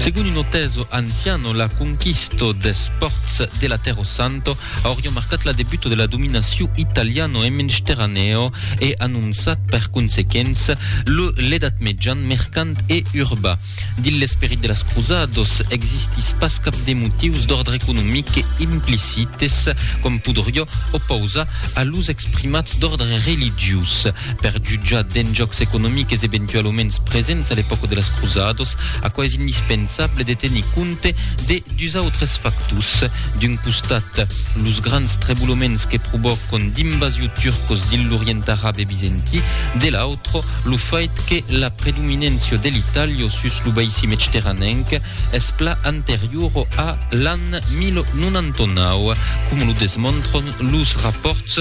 Segon un auteso anciano, la conquisto des pòrts de la Tèrra Santa auriá marcat la debuta de la dominacion italiano en Mensteraneo e anonçat per consequença lo l'Edat Mejan mercant e urba. Dins l'esperit de las Cruzadas existís pas cap de motius d'òrdre economic que implicites com podriá opausar a los exprimats d'òrdre religiós. Per jutjar d'enjòcs economiques eventualuments presents a l'epòca de las Cruzadas, aquò es indispensable de tenir compte de dus autres factors. D'un costat, los grands trebuloments que provòcon d'invasiu turcos dins l'Orient Arab e Bizantí, de l'autre, lo fait que la predominància de l'Itàlia sus lo baissi mecteranenc es plan anteriora a l'an 1099, coma lo desmontron los rapòrts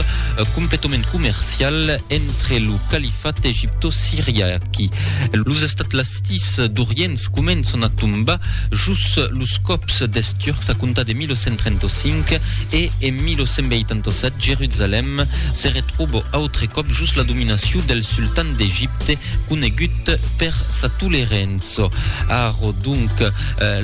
completament comercials entre lo califat egipto-siriac e los estats lastis d'Orients començan a tombar jos los còps dels Turcs a comptar de 1135 e en 1187 Jerusalèm se retròba autre còp jos la dominacion del sultan d'Egipte conegut per sa tolerença. Arro donc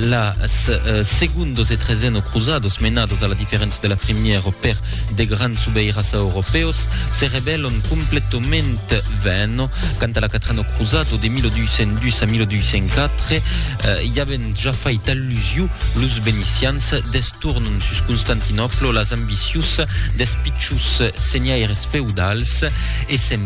las segundos e treseno cruzados menados a la diferença de la primièra per de grands subeiras europèus se rebèlon completament vèn quant a la quatrena cruzado de 1202 a 1204 i avent ja fait allusiu los venicians destornon sus Constantinòpla las ambicius des pichus senhaires feudals e se'n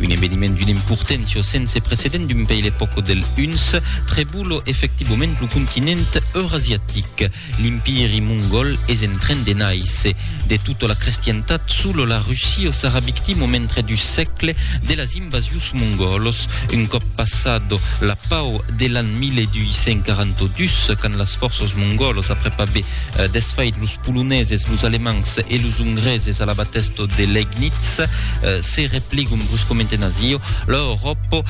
Un eveniment d'una importència sense precedent d'un pei l'epòca del Huns trebula efectivament lo continent eurasiatic. L'Impiri mongòl es en tren de nàisser. De tota la crestiantat, sola la Russia sarà victima mentre du sègle de las invasius mongòlas. Un còp passat la pau de l'an 1242, quand las fòrças mongòlas après aver desfait los Poloneses, los Alemands e los Ongreses a la batèsta de Legnitz, Se repligum vos comenten asio, l'Euròpa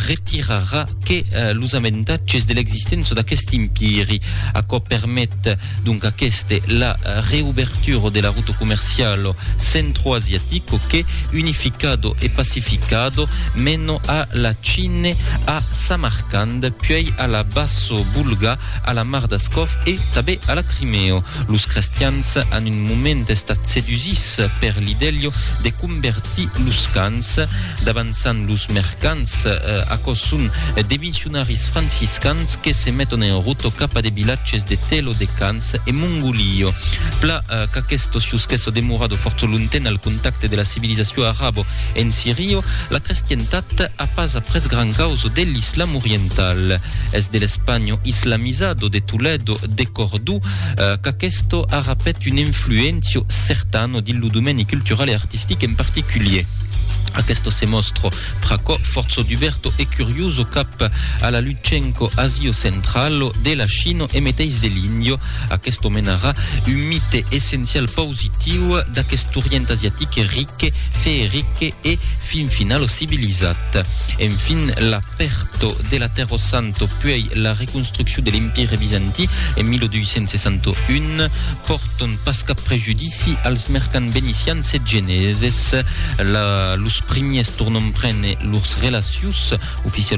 retirarà que los aventatges de l'existéncia d'aqueste empiri. Aquò permet donc aqueste la reubertura de la ruta comerciala centroasiatico que, unificado e pacificado, mena a la Chine, a Samarcand, puèi a la Basso-Bulga, a la mar d'Ascòf e tabé a la Crimèo. Los crestians an un moment estat sedusits per l'idèlio de convertir los cans, davançant los mercants. Aquò's son de missionaris franciscans que se meton en rota cap a de vilatges de Telo, de Cans e Mongolio. Pla qu'aquesto sius qu'esso demorado fòrça longtemps al contacte de la civilizacion arabo en Sirio, la crestientat, A pas après gran causo de l'Islam oriental, es de l'Espanho islamizado de Toledo, de Cordú, qu'aquesto arrapèt un influéncio certano dins lo domèni cultural e artistic en particulier. Aquesto se mòstro pr'aquò fòrço duberto e curioso cap a la Lutxenco Asio Centralo de la Chino e meteis de l'Índio, aquesto menarà un mite essencial pausitiu d'aquest Orient asiatic ric, que Feerikke e fin final lo civilizat. En fin la perto de la Terro Santo puei la reconstrucciu de l'Empire Bizanti en 1261 porton pas cap prejudici als mercants venecians e geneses. La los primiers tornon prene lors relacius oficialament.